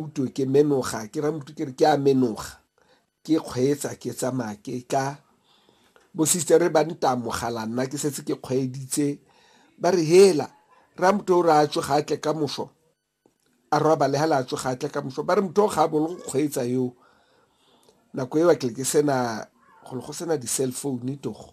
utwe ke menoga ke ra motho ke re ke a menoga ke kgweetsa ke tsamaya ke tla bo sister ba ntamogala nna ke setse ke kgweeditse ba re hela ra motho o re a tsoga a tle ka moso a robale ha le a tsoga a tle ka moso ba re motho o ga a bolo go kgweetsa yo nako eo ke ke sena go go sena di-cell phone togo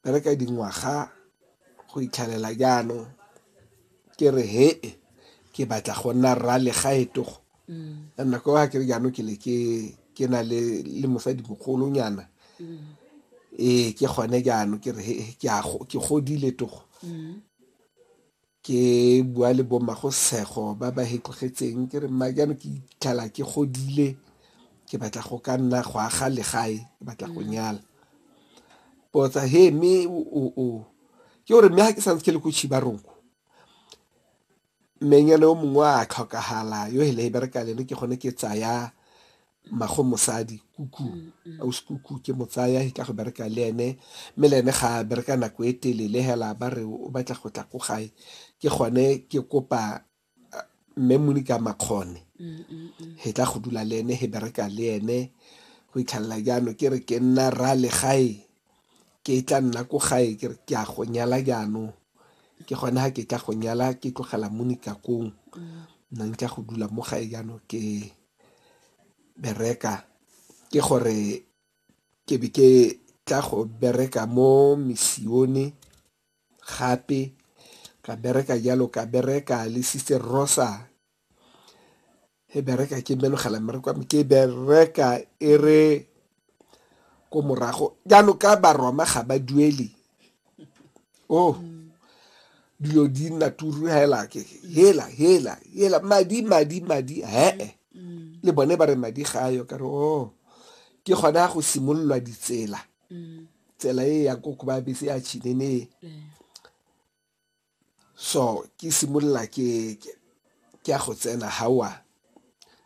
bereka dingwaga go itlhalela jaanong ke re he ke batla go nna rra legaetogo mm. and nako a kere jaanong ke le ke na le le mosadi mogolonyana mm. ee ke gone jaanong ke re he ke godile togo mm. Ke bua le bommagosego ba ba hetlogetseng ke re mma jaanong ke itlhala ke godile ke batla go ka nna go aga legae ke batla go nyala potsa he mme o ke gore mme ga ke santse ke le ko chibaronko mmenyana yo mongwe a tlhokagala yo hele e bereka lene ke gone ke tsaya mmago mosadi kuku ausi kuku ke mo tsaya ke tla go bereka le ene mme le ene ga a bereka nako e telele hela ba re o batla go tla ko gae ke gone ke kopa uh, mme monika makgone he tla go dula le ene he bereka le ene go itlhalela jaano ke re ke nna ra le gae ke tla nna ko gae ke re ke a go nyala jaanong ke gone ha ke tla go nyala ke tlogela monika kong nna ntla go dula mo gae jaanong ke bereka ke gore ke be ke tla go bereka mo misione gape ka bereka jalo ka bereka le sister Rosa he bereka ke mbereka e re ko morago jaanong ka baroma ga ba duele oh dilo di nna turu hela ke hela hela hela madi madi madi hee le bone ba re madi ga ayo ka re o oh, ke gona go simololwa ditsela tsela e ya ko ko ba bese ya chinene so ke simolola ke ya go tsena hawa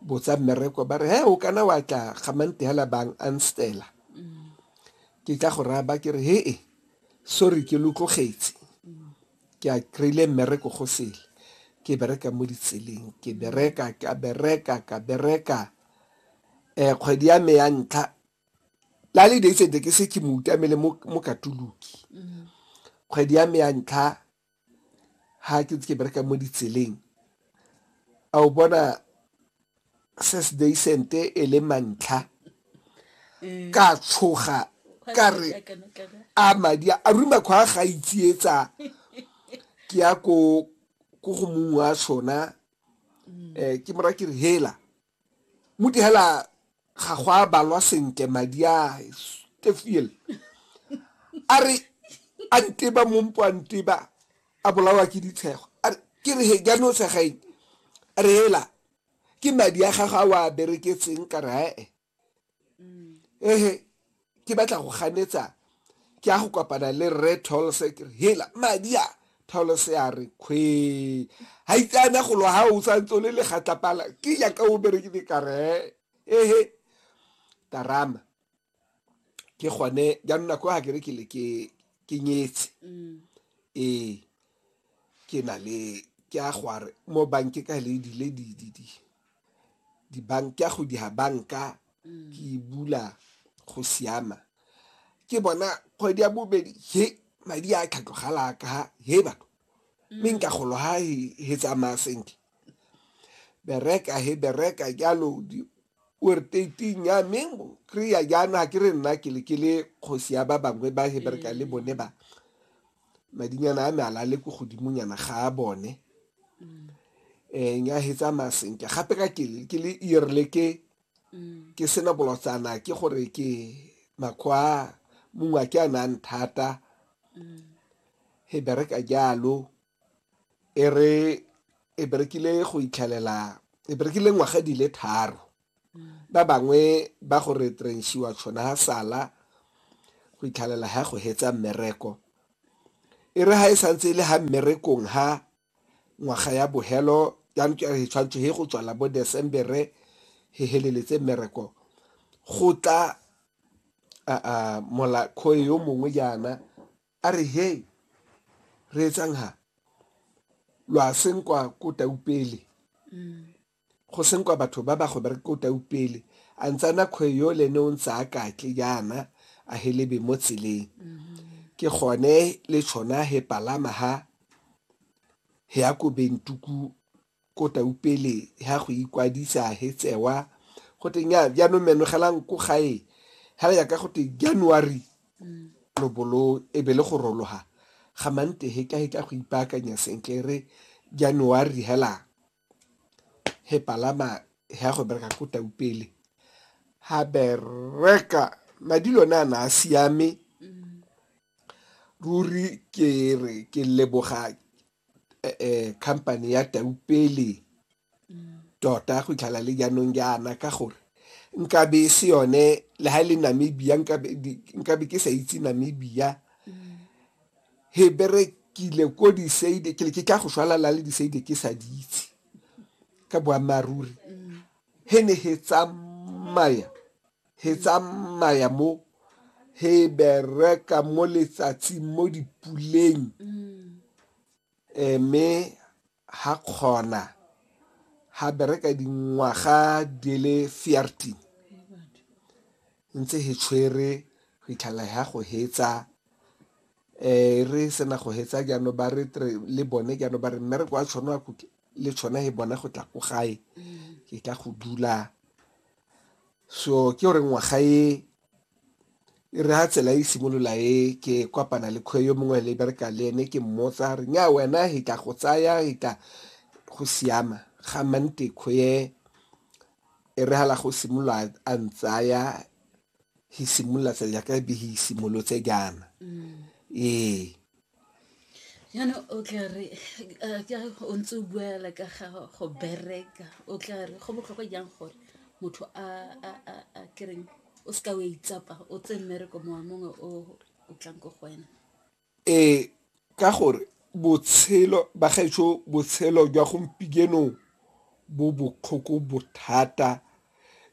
botsa mmereko ba re he o kana wa tla gamante hela bang anstela ke tla go raya ba ke re hee sorry ke lotlogetse ke a kry-ile mmereko go sele ke bereka mo ditseleng ke bereka ka bereka ka bereka um kgwedi ya me ya ntlha la le days and ke se ke mo utamele mo mo katoloki kgwedi ya me ya ntlha ha ke ntse ke bereka mo ditseleng a o bona ses days and e le mantlha ka tshoga ka re a madi a ruma kgwa ga itsietsa ke ya ko ko go mongwe wa sona um ke mora ke re hela muti hela ga go a balwa sentle madi a stefiel a re a nteba mompo a nteba a bolawa ke ditshego a re ke re he jaanong o tshega eng a re hela ke madi a gago a o a bereketseng ka re ee ehe ke batla go ganetsa ke a go kopana le rre tolse ke re hela madi a tolse a re kgwe ga itseana golo ga o santse o le legatlapala ke yaka o berekile kare ehe tarama ke gone jaanong nako ga ke re ke le ke nyetse mm. ee ke na le ke a go a re mo banke ka le dile dididi dibanka go dira banka ke e bula go siama ke bona kgwedi ya bobedi he madi a tlhatlogala ka he batho mme nka golo ha he tsamaya sentle bereka he bereka jalo ortating ya me kry-a jaana ke re nna ke le kgosi ya ba bangwe ba he bereka le bone ba madinyana a me a lale ko godimonyana ga a bone um eh, nya he tsamaya sentle gape ka ke le erile ke mm. ke sena bolotsana ke gore ke makgwa mongwe a ke a nang thata mm. he bereka jalo e re e berekile go itlhelela e berekile ngwaga di le tharo Ba bangwe ba go retrenshiwa tšhona ha sala go itlhalela ha go hetsa mmereko. E re ha e santse e le ha mmerekong ha ngwaga ya bohelo ya ntlo ya he tshwantsho he go tswala bo Desembere he heleletse mmereko go tla molakhoe yo mongwe jaana a re he re etsang ha lo a senkwa ko taupele Go senkwa batho ba ba go bereka ko tau pele, a ntse a na kgwe yo le ne o ntse a katle jaana a helebe mo tseleng. Ke gone le tshona he palama ha he ya ko Bentuku ko tau pele ha go ikwadisa he tsewa go teng ya jaanong menogelang ko gae ha ya ka go te January lobolo e be le go rologa ga mante he ka he tla go ipaakanya sentle re January helang he palama he ya go bereka ko taupele ha bereka madi lone a na a siame ruri ke re ke leboga eh, eh, company ya taupele tota go itlhala le jaanong jaana ka gore nkabe e se yone le ha e le namibia nkabe ke sa itse namibia He berekile ko diseide ke le ke tla go shwalala le diseide ke sa di itse ka boammaaruri he ne he tsamaya he tsamaya mo he bereka mo letsatsing mo dipuleng mme Ha kgona, ha bereka dingwaga di le 14 ntse he tshwere go itlhalla ha go hetsa eh re sena go hetsa jaanong ba re tre le bone jaanong ba re mmereko wa tshone wa go ke- le tshone he bona go tla ko gae ke tla go dula so ke gore ngwaga e e re ha tsela e simolola e ke kopana le kgwe yo mongwe le bereka le ene ke mmotsa re nya wena he tla go tsaya he tla go siama ga mante kgwe e re hala go simolola a ntsaya he simolola tsa jaaka be he simolotse jaana ee Jaanong o tla re ke a re o ntse o bua fela ka ga go bereka o tla re go botlhokwa jang gore motho a ke reng o seka o a itsapa o tseye mmereko mongwe le mongwe o o tlang ko go wena? Ee ka gore botshelo ba gaetsho botshelo jwa bo botlhoko bothata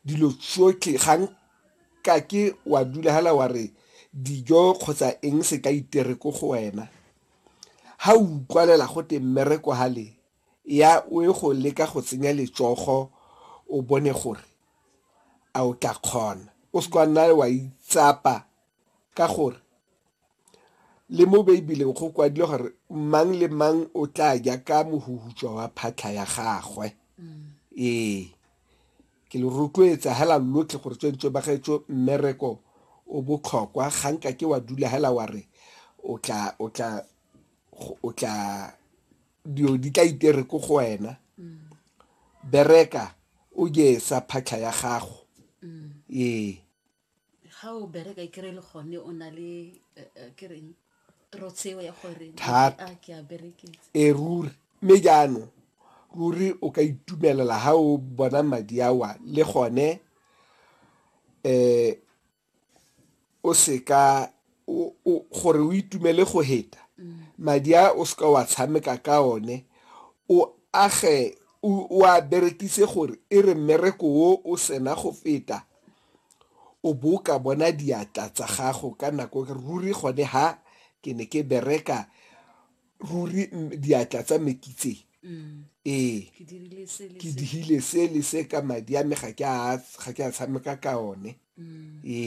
dilo tsotlhe ga nka ke wa dula hela wa re dijo kgotsa eng se ka itere ko go wena ha o utlwalela go te mmereko hale ya o e go leka go tsenya letsogo o bone gore a o tla kgona o se kwa nna wa itsapa ka gore Le mo Beibeleng go kwadilwe gore mang le mang o tla ja ka mohuhutswa wa phatlha ya gagwe. Ee, ke le rotloetsa hela lotlhe gore tswentswe ba gaetso mmereko o botlhokwa ga nka ke wa dula hela wa re o tla o tla o tla dio di tla itere ko go wena bereka o je sa phatlha ya gago ee Ga o bereka e kry-e le gone o na le ke reng trotseo ya gore Thata. a ke a berekisa e ruri mme jaanong ruri o ka itumelela ha o bona madi awa le gone um o seka o- o- gore o itumele go heta madi a o seka wa tshameka ka one o age o o a berekise gore e re mmereko o o sena go feta o bo o ka bona diatla tsa gago ka nako ruri gone ha ke ne ke bereka ruri diatla tsa me ke tse mm. ee ke dihile se le se ka madi a me ga ke a tshameka ka one mm. ee